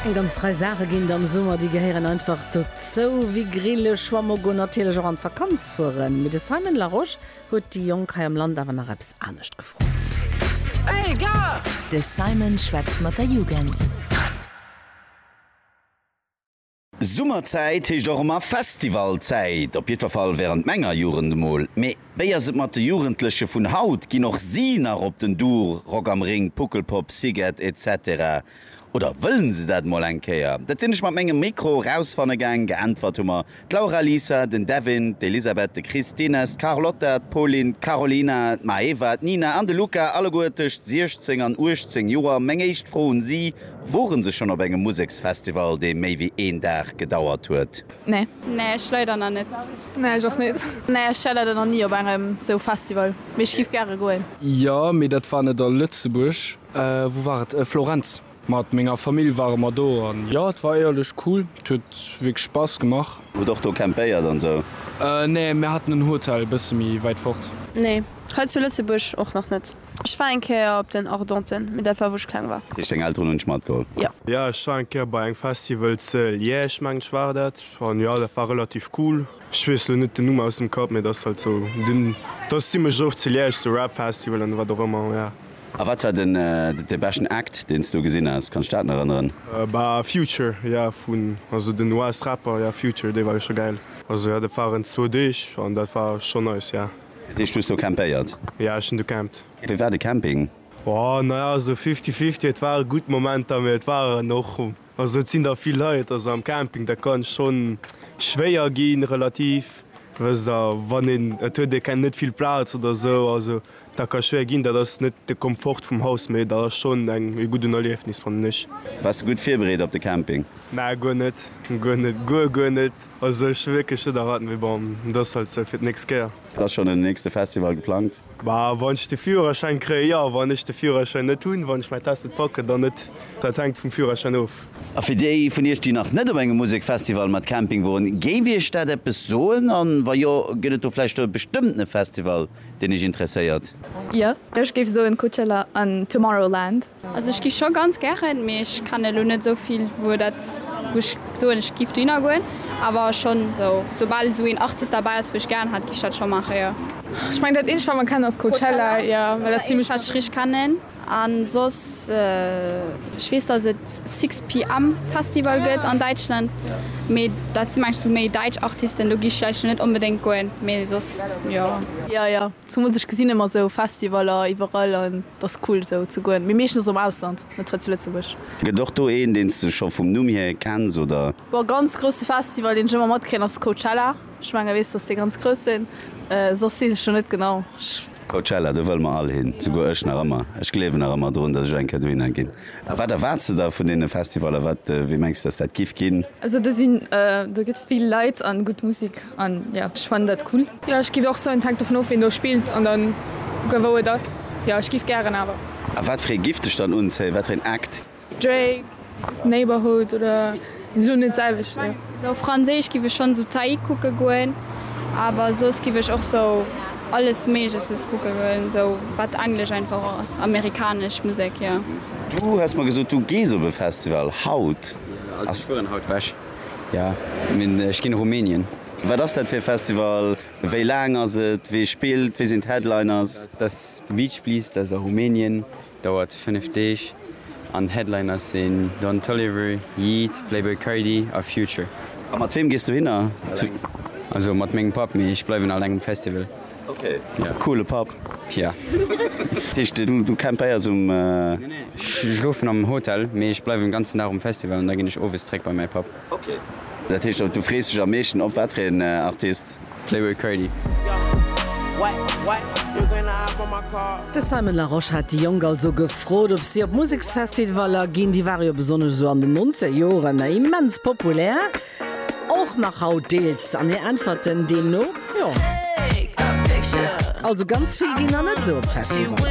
Eng ganz Rei Saache ginn et am Summer, déi gehéieren einfach dozou, wéi grille, schwamme goen, natierlech och an d'Vakanz fueren. Mee de Simon Larosche huet déi Jonk hei am Land awer nach eppes anescht gefrot. De Simon schwätzt mat der Jugend. Summerzäit heescht och emmer Festivalzäit, op jiddwer Fall während menger Jugend emol. Mee wéi ass et mat de Jugendleche vun haut? Ginn och si nach op den Dur, Rock am Ring, Puckelpop, Szighet etc? Oder wëllen se dat emol eng Kéier? Dat sinn ech mat mengem Mikro erausfanne gaang. Geäntwert hu mer d'Laura, Lisa, den Devin, d'Elisabeth, de Chris, d'Ines, d'Carlotta, d'Pauline, d'Carolina, d'Maeva, d'Nina an de Luca, alleguer tëscht 16 an 18 Joer. Meng éischt Fro un si, Woren se schon op engem Museksfestival dee méi wéi een Dag gedauert huet? Nee. Nee ech leider nach net. Nee ech och net. Nee ech war leider nach nie op engem sou Festival, mee ech giff gäre goen. Jo mee dat war net a Lëtzebuerg. Wou war et? Florenz. Mat menger Famill ware mer do an jo et war éierlech cool, et huet wierklech Spass gemach. Hutt och do campéiert an sou? Nee, mir haten en Hotel bësse méi wäit fort. Nee hei zu Lëtzebuerg och nach net. Ech war eng Kéier op den Ardenten, mee dat war wou ech kleng war. Heescht deng Elteren hunn dech matgeholl? Jo. Jo ech war eng Kéier bei engem Festival ze Liège, ech mengen ech war dat, an jo dat war relativ cool. Ech weess elo net den Numm aus dem Kapp, mee dat ass halt sou den, dat ass zimmlech oft ze Liège, sou Rap Festival an wat och ëmmer, jo. A wat war den de beschten Act deen s du gesinn has, kanns du dat nach erënneren? Bah Future, jo vun, also den US Rapper, jo Future, dee war jo scho gäil. Also jo dat waren zwou Deeg, an dat war scho nice, jo. Dat heescht du hues do campéiert? Jo, ech hunn do campt. Wéi war de Camping? Oh, naja, esou fifty fifty. Et ware gutt Momenter, mee et waren och, also et sinn der vill Leit, also am Camping, dat kann schonn schwéier ginn, relativ, wësst der, wann een, et huet ee keng, net vill Plaz oder esou, also dat ka schwéier ginn. Dat ass net de Komfort vum Haus, mee dat ass schonn eng, e gudden Erliefnis, fannen ech. Waars de gutt virbereet op de Camping? Nää, guer net, guer net, guer, guer net. Also ech hu wierklech net erwaart, mee bon, dat ass halt sou fir d'nächst Kéier. Ass schonn en nächste Festival geplangt? Bah, wann ech de Führerschäin kréien, jo. Wann ech de Führerschäin net hunn, wann ech mäin Test net packen, dann net. Dat hänkt vum Führerschäin of. A fir déi vun iech, déi nach net op engem Musekfestival mat Camping woren, géif iech dat eppes soen? An wa jo, gëtt et do vläicht e bestëmmtene Festival, deen iech interesséiert? Jo, ech géif soen Coachella an Tomorrowland. Also ech giff scho ganz gären, mee ech kann elo net esou vill wou dat wou ech soen ech giff dohinner goen, awer schonn esou soubal esou een Artist derbäi ass wou ech gären hat giff ech dat scho maachen jo. Ech meng dat eenzegt wat mer kennen ass Coachella, jo well dat ass zimlech. Eenzegt wat ech richteg kennen. An soss, ech weess dass et sixpm Festival gëtt an Däitschland, mee dat si mengs sou méi däitsch Artisten, do gi ech vläicht net onbedéngt goen, mee soss jo. Jo jo, zumools ech gesinn ëmmer sou Festivaller iwwerall an et ass cool sou ze goen, mee meeschtens am Ausland, net hei zu Lëtzebuerg. Gëtt och do een, deen s de scho vum Numm hier kenns, oder? Boah, ganz grousse Festival deen ech ëmmer matkréien ass Coachella. Ech menge weess dass déi ganz grouss sinn, soss weess ech jo net genau, ech. Coachella, do wëlle mer all hin, souguer ech nach ëmmer. Ech gleewen nach ëmmer drun, dass ech eng Kéier dohinner ginn. A wat erwaarts de der vun deene Festivaller? Wat, wéi mengs de dass dat giff ginn? Also do sinn, do gëtt vill Leit an gutt Musek an jo ech fannen dat cool. Jo ech giff och soen, hänkt dovun of ween do spillt an dann kucken wou et ass. Jo ech giff gären awer. A wat fir ee giff dech dann unzéien, wat fir een Act? Drake, Neighbourhood oder esou net selwecht wéi. Esou franséisch giff ech schons esou Taïk kucken goen, awer soss giff ech och esou alles méigleches kucken goen esou wat englesch einfach och ass, amerikanesch Musek jo. Du hues mer gesot du gees op e Festival haut. Also ech fueren haut weg jo, mee ech ginn Rumänien. Wat ass dat fir e Festival, wéi laang ass et, wee spillt, wee sinn d'Headliners? Dass de Beach Please, dat ass a Rumänien. Dauert 5 Deeg an d'Headliner sinn Don Toliver, Yeat, Playboi Carti a Future. A mat weem gees du hinner? Also mat mengem Papp, mee ech bleiwen alleng um Festival. Ok, coole Papp. Yeah. Dat heescht du campéiers um. Nee nee, ech schlofen am Hotel, mee ech bleiwen den ganzen Dag um Festival an da ginn ech owes zréck bei mäi Papp. Ok, dat heescht du frees dech am meeschten op wat fir een Artist? Playboy Cardi. De Simon Larosche hat déi Jonk also gefrot, ob si op Museksfestivaller ginn. Déi ware jo besonnesch esou an den Nonzeger Joren immens populär, och nach haut deels. An hir Äntwerten deemno, Jo. Also ganz vill ginn der net esou op Festivaller.